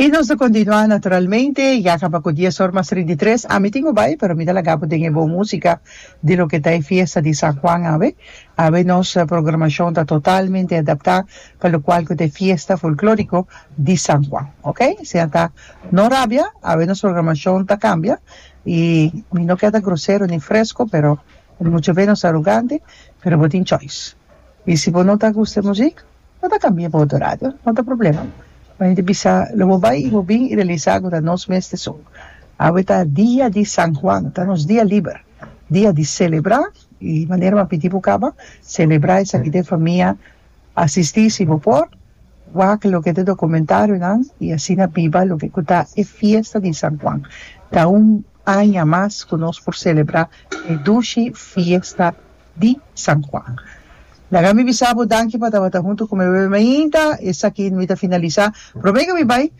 Y nos ta continua naturalmente yaka pa cu dies or mas trinta y tres ami tin cu bay pero mi ta laga bo den e bon musica di loke ta e fiesta di San Juan awe awe nos programacion ta totalmente adapta pa locual cu ta e fiesta folklorico di San Juan ok siña ta no rabia awe nos programacion ta cambia y mi no kier ta grosero ni fresco pero Pero mucha bes nos ta arogante, pero bo tin choice. Y si bo no ta gusta e muzik, bo ta cambia pa otro radio, no ta problema. Bo hende bisa lo bo bay y bo bin y realisa cu ta nos mes te sun. Awe ta dia di San Juan, ta nos dia liber, dia di celebra y manera bo a pidi bo caba, celebra esaki den famia, asisti si bo por, wak loke ta documentarionan y asina biba loke cu ta e fiesta di San Juan. Ta un aña mas cu nos por celebra e dushi fiesta di San Juan. Laga mi bisa bo danki pa tabata hunto cu mi bebe mainta, esaki mi ta finalisa, prome cu mi bay,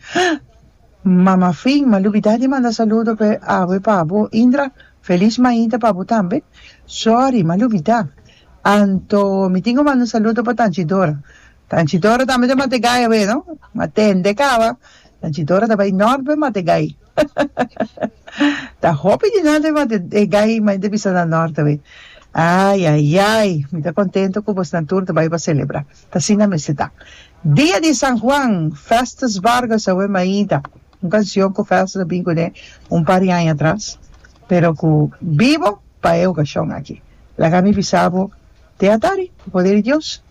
mama fin ma lubida di manda saludo pe abue pa bo Indra, feliz mainta pa bo tambe, sorry ma lubida, anto mi tin cu manda un saludo pa Tanchi Dora, Tanchi Dora tambe ta Mategay awe no, ma tende caba, Tanchi Dora ta bay Norbe Mategay. Ta hopi di nan riba de, de gai mai de bisa na norte we. Ai, ai, ai. Mi ta contento cu bos nan tur ta bai pa celebra. Ta asina a mester ta. Dia di San Juan, Festus Vargas awe mainta. Un cancion cu Festus a bin cu ne un par di aña atras, pero cu bibo pa e ocasion aki. Laga mi bisa bo te atari, cu poder di Dios.